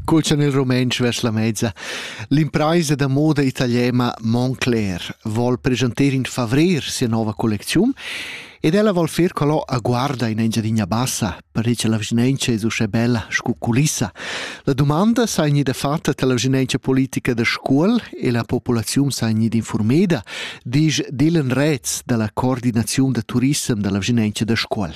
Cul chan il rumentsch vers la mezza. L'impraisa da moda italiana Montclair vol presentar in favrer sia nova collecziun ed ella vol fer quello a guarda in Engiadina Bassa, per che la vicinanza è uschè bella scu culissa. La domanda sa gnida fatta dalla vicinanza politica da scuol e la popolazione sa gnida informada, disch Dylan Retz dalla coordinazione da turissem dalla vicinanza da scuol.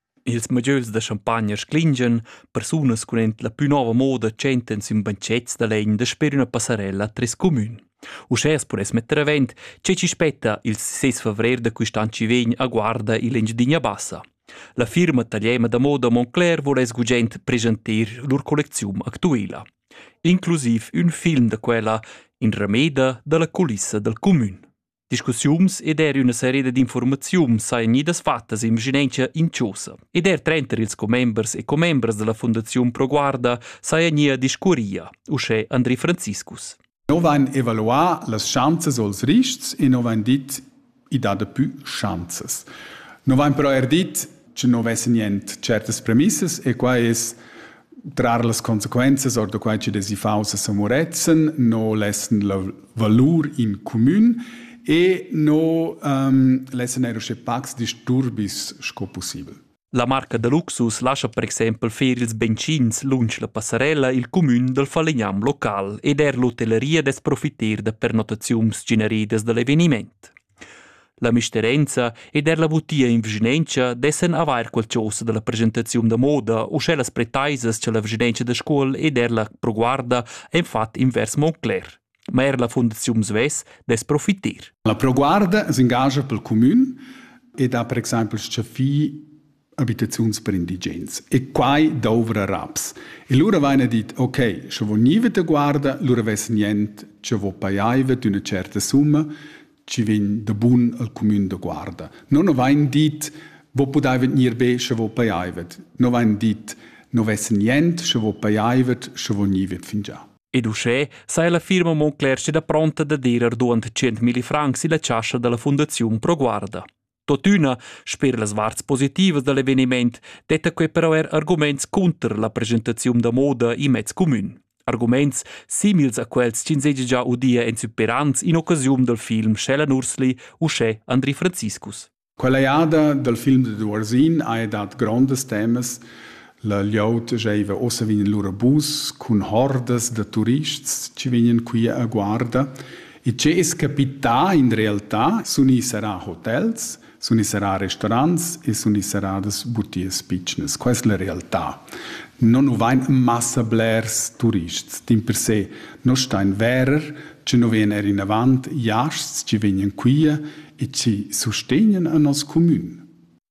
Ils modieus da champagna sclingien, persunas cun ent la plü nova moda tschentan sün banchets da legn dasper üna passarella tres cumün. Uschè as pudess metter avent che chi spetta il 6 favrer da quist'an vegn a Guarda in l'Engiadina Bassa. La firma tagliema da moda Montclair voless gugent presentir lur collecziun actuela. Inclusiv ün film da quella in rameda da la culissa dal cumün. Discussiuns ed er üna seria dad informaziun sajan gnidas fattas in vischinanza inciosa. Ed er trenter ils commembers e commembras della Fundaziun Pro Guarda saja nia discurria, uschè Andri Franziskus. No vain evaluà las schanzas als rists e no vain dit i dà dapü schanzas. No vain però er dit che non vesse nient certas premissas e quai es trar las consequenzas or da quai che desi faus a Samuretzen, no lessen la valur in comün e no um, lessen er usche pacs disturbis sco possibel. La marca da luxus lascia per exempel fer ils benzins lunsch la passarella il comün dal falegnam local ed er l'hotelleria des profiter da pernotaziuns generidas da l'eveniment. La misterenza ed er la butia in vischinanza dessan avair quel chosa da la presentaziun da moda u sche las pretaisas cha la vischinanza da Scuol ed er la ProGuarda han fat invers Montclair. Ma er la Fundaziun svess dess profiter. La ProGuarda s'ingagia pel cumün ed ha per exaimpel s-chaffì abitaziuns per indigens. E quai dovra raps. E lura vaina dit, ok, sche vo niva te guarda, lura vess nient, che vo paiaiva d'üna certa summa, ci vegn da bun al cumün da guarda. Non ho vain dit, vo pudaiva gnir be, sche vo paiaiva. No vain dit, no vess nient, sche vo paiaiva, sche vo niva fingià. Ed uschè sai la firma Moncler steda pronta da dir arduant 100.000 francs illa chascha da la Fundaziun Pro Guarda. Totüna, sper las varts positivas da l'eveniment, detta quei però er arguments cunter la presentaziun da moda in mezz comün. Arguments simils a quels ch'ins seigi già udia en superans in occasiun dal film Shellen Ursli uschè Andri Franziskus. Quella jada dal film de Durzin ha dat grondas temas. La glieud giaiva ossa vegn lur bus cun hordas da turists che vegnan qui a guarda E che es capità in realtà sun i sarà hotels, sun i sarà restaurants e sun i saradas butias pitschnas. Quai es la realtà. No nu vain massa blers turists. D'in per se no stain verer che no vegn eir inavant jasts chi vegnan quia e chi sustegnan a nos cumün.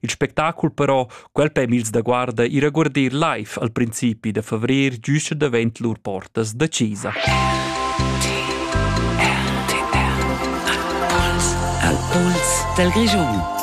Il spectacul però, quel permezs da guarda i regordir live al principi da favrer giuscha davent lur portas da chesa. Al puls dal Grischun.